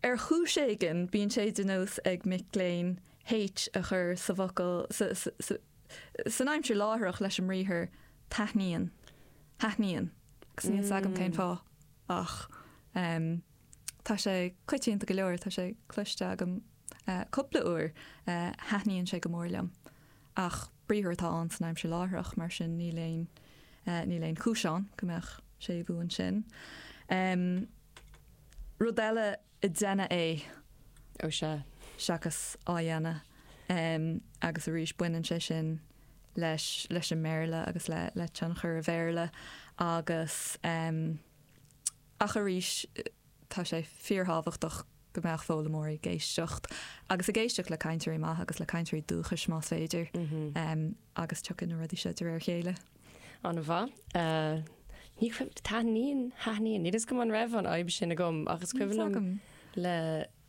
Ar chúis éigin, bíonn sé de nós ag mic léinn H a chur sa bhfocal san aimsir láithreach leis an mbriathar taithníonn, thaitníonn, agus níl 's agam cén fáth ach tá sé coitianta go leor, tá sé cloiste agam cupla uair, thaitníonn sé go mór liom. Ach briathar atá ann san aimsir láithreach, mar sin níl aon níl aon chúis ann go mbeadh séimhiú ansin. Rud eile, ag déanamh é, ó sea, seachas á dhéanamh. Agus arís baineann sé sin leis leis an mBéarla agus le le tionchar an Bhéarla agus. Ach arís tá sé fíorthábhachtach go mbeadh foghlaimeoirí ag éisteacht, agus ag éisteacht le cainteoirí maithe agus le cainteoirí dúchais más féidir, agus tiocfaidh na rudaí seo de réir a chéile. An-mhaith. Ní cuimhin, taitníonn, thaitníonn, níl a fhios agam an raibh an fhadhb sin agam ach is cuimhin liom le,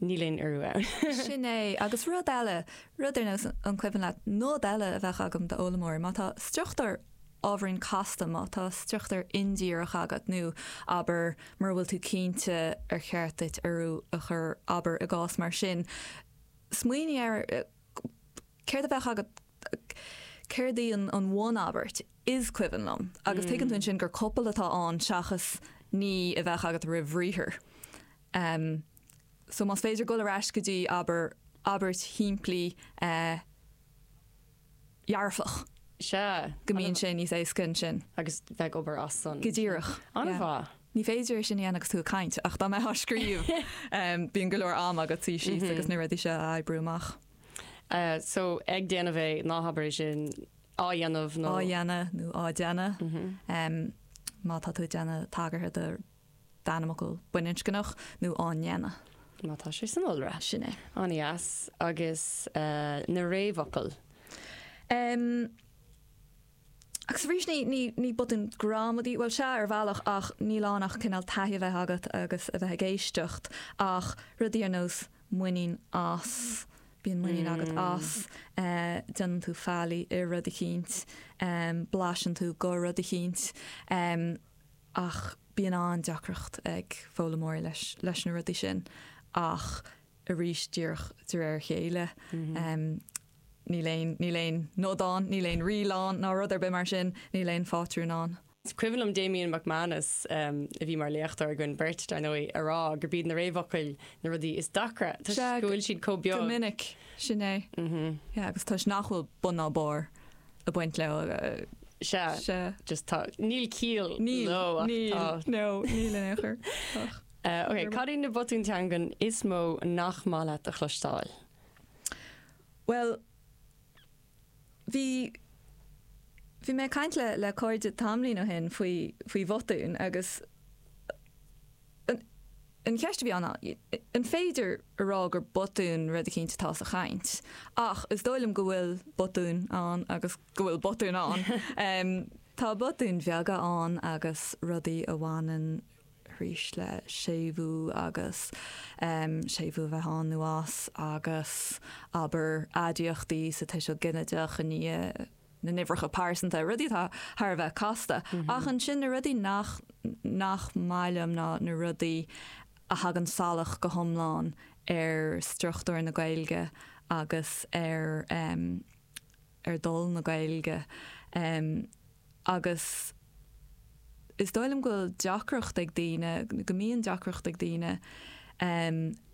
Níl aon urú ann. Sin é. Agus rud eile, rud ar nós, an cuimhin leat nod eile a bheadh agam d'fhoghlaimeoir? Má tá struchtúr ábhairín casta, má tá struchtúr indíreach agat nó, abair, mura bhfuil tú cinnte ar cheart duit urú a chur, abair, i gcás mar sin, smaoinigh ar céard a bheadh agat, céard í an bhunabairt, is cuimhin liom. Agus tuigeann tú ansin gur copail atá ann seachas an a bheadh agat roimh bhriathar. so más féidir dul ar ais go dtí, abair, abairt shimplí dhearfach. Sea. go mbíonn sé níos éasca ansin. agus bheith ag obair as san. Go díreach. An-mhaith. Ní féidir é sin a dhéanamh agus tú ag caint ach dá mbeifeá ag scríobh bíonn go leor ama agat suí síos agus na rudaí seo a oibriú amach. So ag déanamh é, ná habair é sin, á dhéanamh nó. á dhéanamh nó á déanamh. Má tá tú ag déanamh tagartha do d'ainmfhocal baininscneach nó á ndéanamh. má tá sé san iolra. Sin é. An-dheas. Agus na réamhfhocail? Em. Agus arís ní, ní, ní botún gramadaí, bhuel, sea, ar bhealach ach níl ann ach cineál taithí a bheith agat agus a bheith ag éisteacht ach rudaí ar nós muinín as, bíonn muinín agat as, eh, déanann tú faillí i rud eicínt, em, blaiseann tú de rud eicínt, em. ach bíonn an-deacracht ag foghlaimeoirí leis leis na rudaí sin ach arís díreach de réir a chéile. Níl aon níl aon nod ann, níl aon riail ann ná rud ar bith mar sin, níl aon phátrún ann. Is cuimhin liom Damian McManus, a bhí mar léachtóir againn beirt, dar ndóigh, ag rá gurb iad na réamhfhocail na rudaí is deacra toisc go bhfuil siad chomh beag. Go minic, sin é. Yeah, agus toisc nach bhfuil bun ná barr a bhaint leo Sea, sea. just tá, níl ciall leo Níl, ach níl, tá. no, níl in aon chor. Ach Eh, ok, Níor mhaith. cad iad na botúin teangan is mó nach maith leat a chloisteáil? Bhuel, bhí, bhí mé ag caint le, le cairde tamlaín ó shin faoi, faoi bhotúin agus, eh, An cheist a bhí ann, an féidir a rá gur botún rud eicínt atá sa chaint? Ach is dóigh liom go bhfuil botúin ann agus go bhfuil botúin ann. Tá botúin bheaga ann agus rudaí a bhaineann arís le séimhiú agus séimhiú a bheith ann nó as agus abair aidiachtaí sa tuiseal ginideach i ndiaidh na n-uimhreacha pearsanta, rudaí atá thar a bheith casta, ach ansin na rudaí nach nach maith liom ná na rudaí a thagann salach go hiomlán ar struchtúr na Gaeilge agus ar em ar dhul na Gaeilge em agus. is dóigh liom go bhfuil deacracht ag daoine, go mbíonn deacracht ag daoine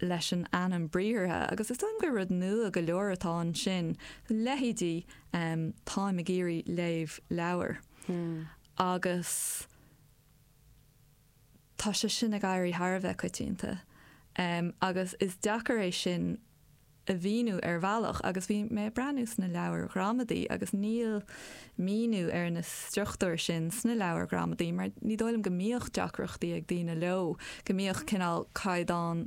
leis an ainm briathartha agus is dóigh liom gur rud nua go leor atá ansin, leithéidí táim ag iarraidh léamh leabhair agus tá sé sin ag éirí thar a bheith coitianta agus is deacair é sin a mhíniú ar bhealach agus bhí mé ag breathnú sna leabhair ghramadaí agus níl míniú ar na struchtúir sin sna leabhair ghramadaí mar ní dóigh liom go mbíodh deacrachtaí ag daoine leo, go mbíodh cineál caighdeáin.